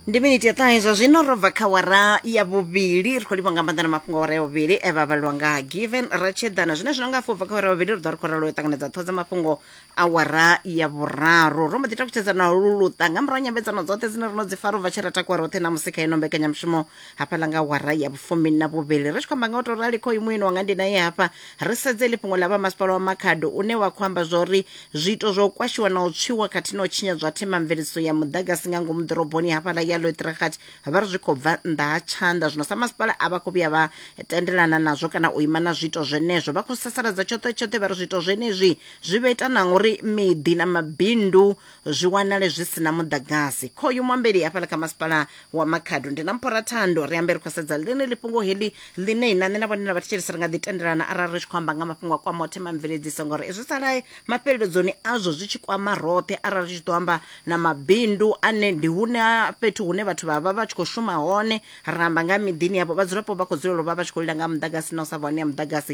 ndi miniti ya ṱahe zwa zwino ro bva kha wara ya vhuvhili ri khou livha nga maanḓa na mafhungo a wara ya vhuvhili e vha vhalwa nga given ratshedana zwine zwino nga afho bva kha wara ya vhuvhili ri ḓo ri khou ralo u ṱanganedza ṱhoho dza mafhungo a wara ya vhuraru ro mbo ḓi takutshedza na lu luṱa nga murahu nyambedzano dzoṱhe dzine ro no dzi fara u bva tshi ra takuwa roṱhe na musika ino mbekanyamushumo hafhaḽa nga wara ya vhufumi na vhuvhili ri tshi khou amba nga u tou rali khoyu mueni wanga ndi naye hafha ri sedze ḽi fhungo ḽa vha masipala wa makhado une wa khou amba zwa uri zwiito zwa u kwashiwa na u tswiwa khathihi na u tshinyadzwa themamveledziso ya muḓagasi nga ngomu ḓoroboni hafhaḽa ya loetragat vha ri zwi khou bva nnḓa ha tshanḓa zwino sa masipala a vha khou vhuya vha tendelana nazwo kana u ima na zwiito zwenezwo vha khou sasaladza tshoṱhe tshoṱhe vha ri zwiito zwenezwi zwi vha ita na uri miḓi na mabindu zwi wanale zwi si na muḓagasi khoyu muambeli hafhaḽa kha masipala wa makhado ndi na mphora thando ri ambe ri khou sedza ḽeneḽi fhungo heḽi ḽine na nṋe na vhone na vhathetshelesi ri nga ḓi tendelana arali ri tshi khou amba nga mafhungo a kwamaho themamveledziso ngori izwi salae mafheleledzoni azwo zwi tshi kwama roṱhe arali ri tshi ḓo amba na mabindu ane ndi hune ha fhethu hune vhathu vha vha vha tshi khou shuma hone ra amba nga ha miḓini yavho vhadzulapo vha khou dzulela u vha vha tshi khou lila nga ha muḓagasi na u sa vha hone ha muḓagasi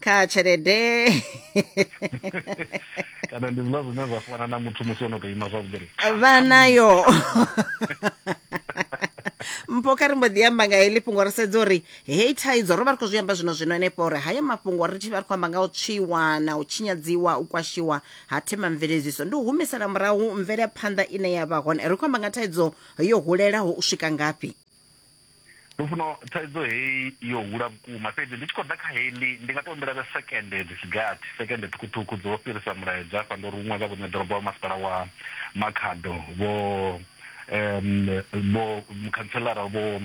kha tshelede kana ndi zwiḽa zwine zwa fana na muthu musi ono to ima zwavhuḓi vha nayo mpho kha ri mbo ḓi amba nga heḽi fhungo ri sedza uri heyi thaidzo ro vha ri khou zwi amba zwino zwino henefho uri hayo mafhungo ri tshi vha ri khou amba nga u tswiwa na u tshinyadziwa u kwashiwa ha themamveledziso ndi u humisela murahu mvelaphanḓa ine ya vha hone ri khou amba nga thaidzo yo hulelaho u swika ngafhi lufuno thaidzo heyi yo hula vhukuma fhedzi ndi tshi khou ḓa kha heyi ndi ndi nga to humbela vhe sekende dzi sigathi sekende ṱhukhuṱhukhu dzo fhirisa mulaedza afha ndo ruṅwa nga vhuṋe ḓorobo wa masipala wa makhado vho um vho mukhantselara vho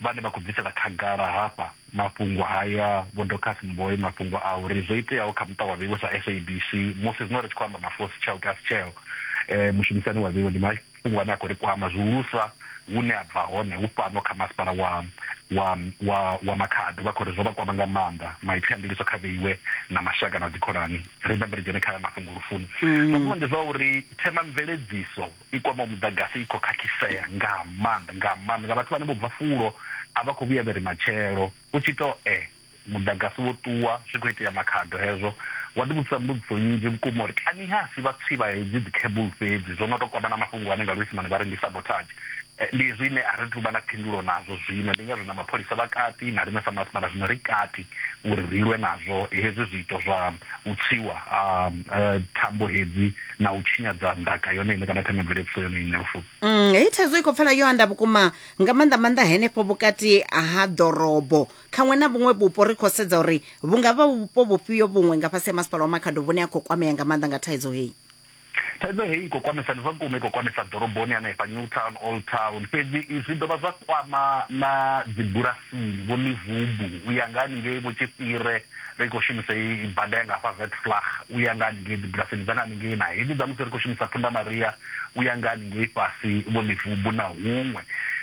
vhane vha khou bvisela khagala hafha mafhungo haya vho docas mboyi mafhungo a uri zwo iteaho kha muṱa wa vheiwe sa sabc musi zwino ri tshi khou amba mafosi tsheo kasi tsheo um mushumisani wa vheiwe ndi Mafhungo ane a khou ri kwama zwihulusa hune a bva hone hu fhano kha masipala wa wa wa wa Makhado vha khou ri zwo vha kwama nga maanḓa. Maipfi a ndiliso kha vheiwe na mashaka na dzikhonani. Ri bambe ri dzhene kha mafhungo lufuni. Mafhungo ndi zwa uri themamveledziso i kwamaho muḓagasi i khou khakhisea nga maanḓa nga maanḓa nga vhathu vhane vho bva fulo a vha khou vhuya vha ri matshelo u tshi tou e. Muḓagasi wo ṱuwa, zwi khou itea makhado hezwo. Wa ḓivhudzisa mbudziso nnzhi vhukuma uri kani ha si vhatswi vha hedzi dzikhebulu fhedzi zwo no tou kwama na mafhungo ane nga Luisimane vha ri ndi sabotage. Ndi hezwi ine a ri thu vha na phindulo nazwo zwino, ndi ngazwo na mapholisa vha kati na riṋe sa masipala zwino ri kati uri ri lwe nazwo hezwi zwiito zwa u tswiwa ha thambo hedzi na u tshinyadza ndaka yone ine kana themamveledziso yone ine. Lufuno. Heyi thaidzo i khou pfala yo anda vhukuma, nga maanḓa-maanḓa henefho vhukati ha ḓorobo. Khaṅwe na vhuṅwe vhupo ri khou sedza uri vhu nga vha vhupo vhufhio vhuṅwe nga fhasi ha Masipala wa Makhado vhune a khou kwamea nga maanḓa nga thaidzo heyi. Thaidzo heyi i khou kwamesa, ndi zwa vhukuma i khou kwamesa ḓoroboni hanefha Newtown, Old Town, fhedzi i zwi dovha zwa kwama na dzibulasini, Vho Livubu u ya nga haningei, Vho Tshifhire, ri khou shumisa heyi bada ya nga hafha Witflag u ya nga haningei dzibulasini dza nga haningei na hedzi dza musi ri khou shumisa Phunda Maria u ya nga haningei fhasi Vho Livubu na huṅwe.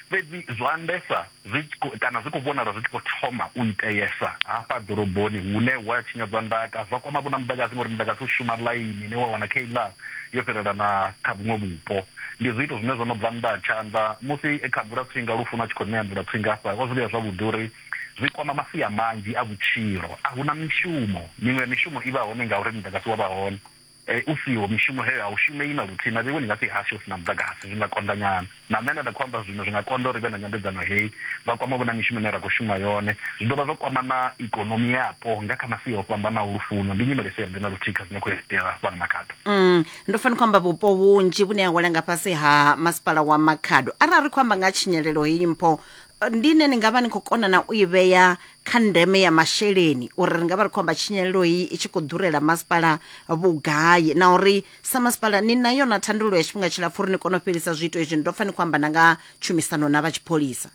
Fhedzi zwa ndesa. zwi tshi khou kana zwi khou vhonala zwi tshi khou thoma u iteesa hafha ḓoroboni hune hu a tshinyadzwa ndaka zwa kwama vhona muḓagasi ngori muḓagasi u shuma ḽaini ine wa wana kha iḽa yo fhirela na kha vhuṅwe vhupo. Ndi zwiito zwine zwo no bva nnḓa ha tshanḓa musi e kha Mvulatswinga Lufuno a tshi khou ṋea Mvulatswinga hafha o zwi vhea zwavhuḓi uri zwi kwama masia manzhi a vhutshilo. A hu na mishumo, miṅwe ya mishumo i vha hone ngauri muḓagasi wa vha hone. U siho, mishumo heyo a u shumei na luthihi. Mavhevhoni nga fhi hashu hu si na muḓagasi zwi nga konḓa nyana. Na nṋe nda ḓa khou amba zwino, zwi nga konḓa uri ri vhe na nyambedzano hei. Vha kwama vho na mishumo ine ra khou shuma yone. Zwi dovha zwa kwama na ikonomi yapo nga kha masia o fhambanaho. Lufuno ndi nyimele i si yavhuḓi na luthihi kha zwine khou itea fhano Makhado. Mm, ndo fa ni khou amba vhupo vhunzhi vhune ha wela nga fhasi ha masipala wa Makhado. Arali ri khou amba nga ha tshinyalelo heyi mpho, ndi ine ni nga vha ni khou kona na u i vhea kha ndeme ya masheleni uri ri nga vha ri khou amba tshinyalelo heyi i tshi khou ḓurela masipala vhugai na uri sa masipala ni na yona thandululo ya tshifhinga tshilapfu uri ni kone u fhelisa zwiito izwi ni ḓo pfa ni khou amba na nga tshumisano na vha tshipholisa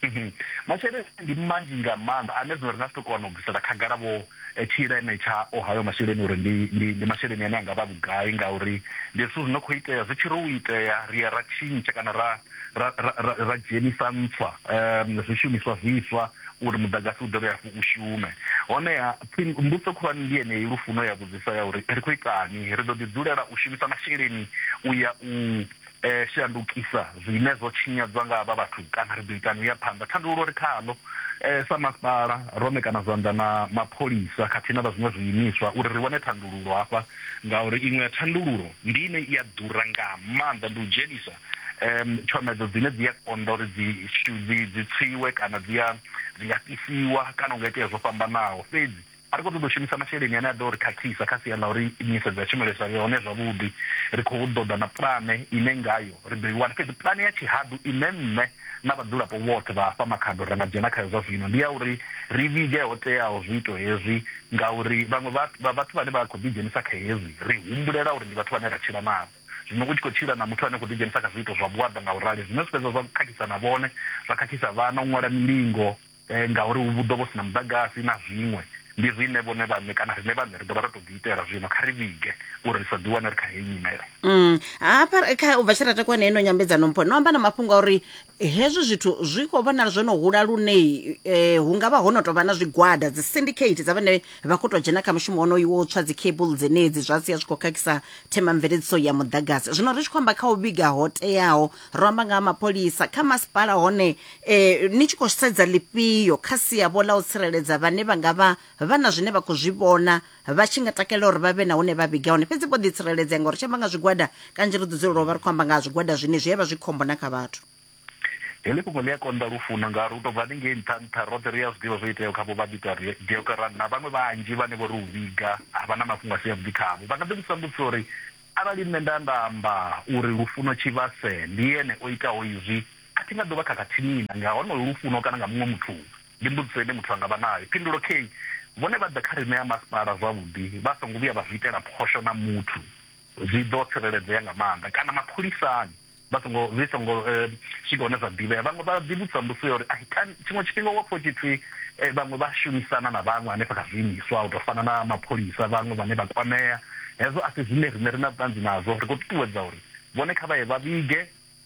mhm. masheleni ndi manzhi nga maanḓa ane zwino ri nga si tou kona u bvisela khagala vho tshileme tsha o hayo masheleni uri ndi, ndi, ndi masheleni ane a nga vha vhugai, ngauri ndi zwithu zwi no khou itea. Zwi tshi ri u itea, ri ya ra tshintsha kana ra, ra, ra, ra, ra dzhenisa ntswa, um, zwishumiswa zwiswa uri muḓagasi u dovhe hafhu u shume. Honeha, mbudzo khulwane ndi yeneyi, Lufuno ya vhudzisa ya uri, Ri khou itani? Ri ḓo ḓi dzulela u shumisa masheleni u ya u. shandukisa zwine zwo tshinyadzwa nga havha vhathu kana ri ḓo itani u ya phanḓa. Thandululo ri khaḽo sa masipala, ro ṋekana zwanḓa na mapholisa khathihi na vha zwiṅwe zwiimiswa uri ri wane thandululo hafha ngauri iṅwe ya thandululo ndi ine i a ḓura nga maanḓa, ndi u dzhenisa tshomedzo dzine dzi a konḓa uri dzi dzi dzi tswiwe kana dzi a dzi nga fhisiwa kana hu nga itea zwo fhambanaho. Fhedzi A ri khou ṱoḓa u shumisa masheleni ane a ḓo ri khakhisa kha sia ḽa uri nḓisedzo ya tshumelo i sa vhe hone zwavhuḓi. Ri khou ḓo ḓa na pulane ine ngayo ri ḓo i wana. Fhedzi pulane ya tshihaḓu ine nṋe na vhadzulapo vhoṱhe vha hafha Makhado ra nga dzhena khayo zwa zwino ndi ya uri ri vhige ho teaho zwiito hezwi ngauri vhaṅwe vha vhathu vhane vha khou ḓidzhenisa kha hezwi ri humbulela uri ndi vhathu vhane ra tshila navho. Zwino u tshi khou tshila na muthu ane a khou ḓidzhenisa kha zwiito zwa vhuaḓa nga u rali, zwine zwi fhedza zwa khakhisa na vhone, zwa khakhisa vhana, u ṅwala milingo, ngauri hu ḓo vha hu si na muḓagasi na zwiṅwe, ndi riṋe vhone vhaṋe kana riṋe vhaṋe ri ḓo vha ro tou ḓiitela. Zwino kha ri vhige uri ri sa ḓiwane ri kha heyi nyimele. Hafha kha u bva tshe ra takuwa na ino nyambedzano mpho no amba na mafhungo a uri hezwi zwithu zwi khou vhonala zwo no hula lune eh, hu nga vha ho no tou vha na zwigwada dzi syndicate dza vhane vha khou tou dzhena kha mushumo wonoyu wo tswa dzi cable dzenedzi zwa sia zwi khou khakhisa themamveledziso ya muḓagasi zwino ri tshi khou amba kha u vhiga ho teaho ro amba nga ha mapholisa kha masipala hone e, ni tshi khou sedza ḽifhio kha sia vho ḽa u tsireledza vhane vha nga vha vha na zwine vha khou zwi vhona vha tshi nga takalela uri vha vhe na hune vha vhiga hone fhedzi vho ḓitsireledzea ngauri tshi amba nga zwigwada kanzhi ri ḓo dzulela u vha ri khou amba nga ha zwigwada zwine zwi a vha zwi khombo na kha vhathu heḽi fhungo ḽi a konḓa lufuno ngauri u tou bva haningei nṱha nṱha roṱhe ri a zwi ḓivha zwo iteaho kha vho vhabita deokaran na vhaṅwe vhanzhi vhane vho ri u vhiga ha vha na mafhungo a si avhuḓi khavho vha nga ḓi vhudzisa mbudziso uri Arali nṋe nda nda amba uri lufuno tshivhase ndi ene o itaho izwi, a thi nga ḓo vha khakhathini na nga honoho lufuno kana nga muṅwe muthu. Ndi mbudziso ine muthu a nga vha nayo. Phindulo, Khei vhone vha ḓe kha riṋe a masipala zwavhuḓi vha songo vhuya vha zwi itela phosho na muthu. Zwi ḓo tsireledzea nga maanḓa. Kana mapholisani. vha songo zwi songo eh, swika hune zwa ḓivhea vhaṅwe vha ḓivhudzisa mbudziso ya uri ai kani tshiṅwe tshifhinga wa pfha tshi pfi eh, vhaṅwe vha shumisana na vhaṅwe hanefha kha zwiimiswa u tou fana na mapholisa vhaṅwe vhane vha kwamea hezwo a si zwine riṋe ri na vhuṱanzi nazwo ri khou ṱuṱuwedza uri vhone kha vha ye vha vhige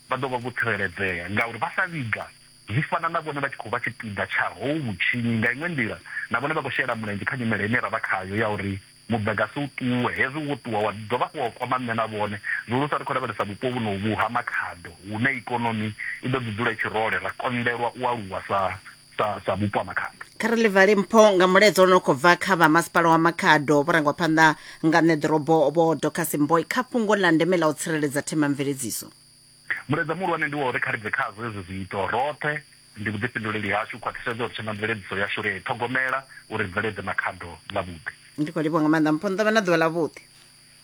vha ḓo vha vho tsireledzea ngauri vha sa vhiga zwi fana na vhone vha tshi khou vha tshipiḓa tsha hou vhutshinyi nga iṅwe nḓila na vhone vha khou shela mulenzhe kha nyimele ine ra vha khayo ya uri Muḓagasi u ṱuwe. Hezwi wo ṱuwa, wa dovha hafhu wa kwama nṋe na vhone. Zwihulusa ri khou lavhelesa vhupo vhunovhu ha Makhado, hune ikonomi i ḓo ḓi dzula i tshi role, ra konḓelwa u aluwa sa, sa, sa vhupo ha Makhado. Kha ri ḽi vale mpho nga mulaedza u no khou bva kha vha Masipala wa Makhado vho rangwa phanḓa nga Ṋeḓorobo Vho Dorcas Mboi kha fhungo ḽa ndeme ḽa u tsireledza themamveledziso. Mulaedza muhulwane ndi wa uri kha ri bve khazwo hezwi zwiito roṱhe. Ndi vhuḓifhinduleli hashu u khwaṱhisedza uri themamveledziso yashu ri a i ṱhogomela uri ri bveledze na khado ḽavhuḓi. Ndi khou livhuwa nga maanḓa mpho nḓo vha na ḓuvha ḽavhuḓi.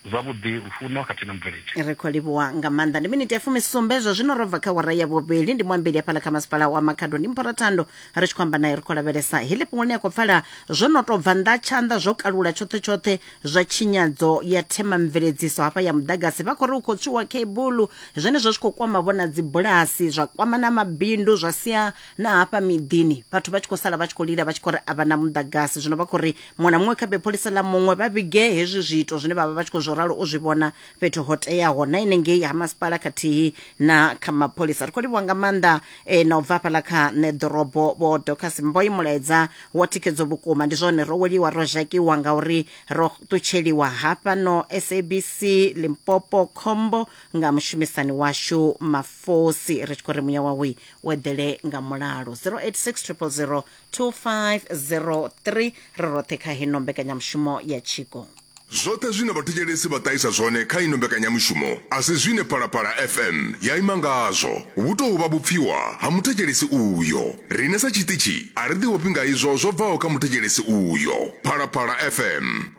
Zwavhuḓi, lufuno khathihi na mubveledzi. Ri khou livhuwa nga maanḓa. Ndi miniti ya fumisumbe zwa zwino ro bva kha awara ya vhuvhili. Ndi muambeli hafhaḽa kha masipala wa Makhado ndi Mphora Thando ri tshi khou amba nae ri khou lavhelesa heḽi fhungo ḽine a khou pfala zwo no tou bva nnḓa tshanḓa zwo kalula tshoṱhe tshoṱhe zwa tshinyadzo ya themamveledziso hafha ya muḓagasi vha khou ri u khou tswiwa khebuḽu zwenezwo zwi khou kwama vhona dzibulasi zwa kwama na mabindu zwa sia na hafha miḓini vhathu vha tshi khou sala vha tshi khou lila vha tshi khou ri a vha na muḓagasi zwino vha khou ri muṅwe na muṅwe kha bepholisa ḽa muṅwe vha vhige hezwi zwiito zwine vha vha vha tshi khou zwo ralo u zwi vhona fhethu ho teaho na inengei ha masipala khathihi na kha mapholisa ri khou livhuwa nga maanḓa e, na u bva hafhaḽa kha nṋe ḓorobo vho docas mboi mulaedza wa thikhedzo vhukuma ndi zwone ro weliwa ro zhakiwa ngauri ro ṱutsheliwa hafha no sabc limpopo khombo nga mushumisani washu mafosi ri tshi khou ri muya wawe u eḓele nga mulalo 086 000 2503 ri roṱhe kha hino mbekanyamushumo ya tshiko Zwoṱhe zwine vhathetshelesi vha ṱahisa zwone kha ino mbekanyamushumo a si zwine Phalaphala FM ya ima ngazwo. Vhu tou vha vhupfiwa ha muthetshelesi uyo. Riṋe sa tshiṱitshi a ri ḓiofhi nga izwo zwo bvaho kha muthetshelesi uyo. Phalaphala FM.